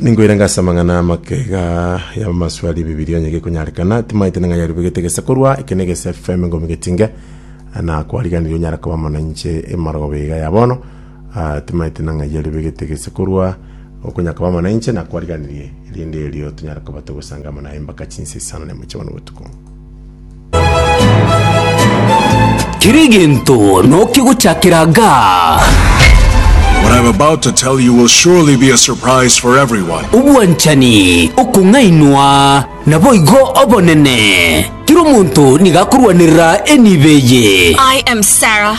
Ninkoirenge ase amang'ana amagega y'abamaswali Bibilia onye gekonyarekana. Timaete ning'a yarubegete egesa korwa eke na egesa FM ngomi getinge na kwariganirie onyare koba amo nainche emorogoba iga ya bono. Ah, timaete ning'a yarubegete egesa korwa okonyara koba amo nainche na kwariganirie erinde erio tonyare koba togosanga amo naye mpaka chinsa isano na emo chia bono botuko. Kera egento nokia gochakera gaa. What I am about to tell you will surely be a surprise for everyone. Obwanchani, okong'ainwa, naboigo obonene. Kera omonto nigo akorwanerera enibo eye. I am Sarah.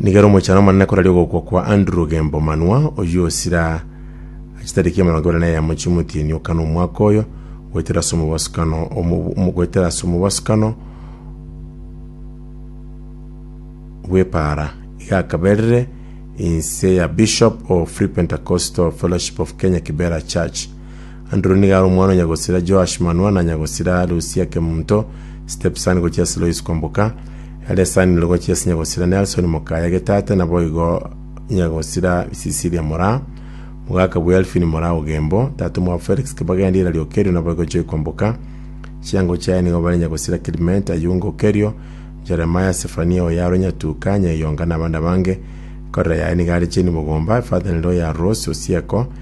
Nigere omochano omonene koraria ogokwa kwa Andrew Gembo Manwa, oyio osira chitariki emerongo ebere na eyemo chiomotienyi okana omwaka oyo, goetera ase omobosokano omo- omo- goetera ase omobosokano bw'epaara. Iga akaberire inse ya Bishop of Free Pentecostal Fellowship of Kenya Kibera Church. Anduru nigo are omwana o nyagosira Joash, Manoa, na nyagosira Lusia Kemunto, stepson, gochia ase Lois Kwamboka, Elesani Ndoro gochia ase nyagosira Nelson Mokaya Getate, naboigo nyagosira Cecilia Moraa, mogaka bwe Elfin Moraa Ogembo, tata omwabo Felix Kibagendi Irari Okerio naboigo Joy Kwamboka. Chiango chiaye nigo bare nyagosira Clement Ayunga Okerio, Jeremiah Sefania Oyaro Nyatuka, Nyaiyonga na abande abange. Ekorera yaye nigo are Jane Bogomba, efather in law ya Rose Osieko,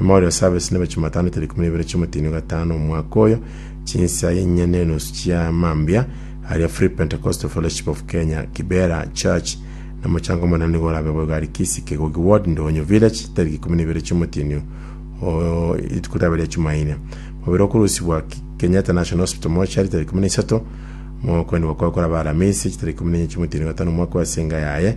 Memorial Service neba Chumatano tariki ikumi na ibere chi'omotienyi o gatano omwaka oyo, chinsa inye na enusu chia mambia, aria Free Pentecostal Fellowship of Kenya, Kibera Church, na omochango omonene nigo orabe boigo aria Kisii, Kegogi Ward, Ndonyo Village, tariki ikumi na ibere chi'omotienyi o rituko riabe ria Chumaine. Mobere okorusibwa Ki- Kenyatta National Hospital Mortuary tariki ikumi na isato, mogokoenigwa kwaye korabe Aramisi, chitariki ikumi na enye chi'omotienyi o gatano omwaka oyo ase enga yaye,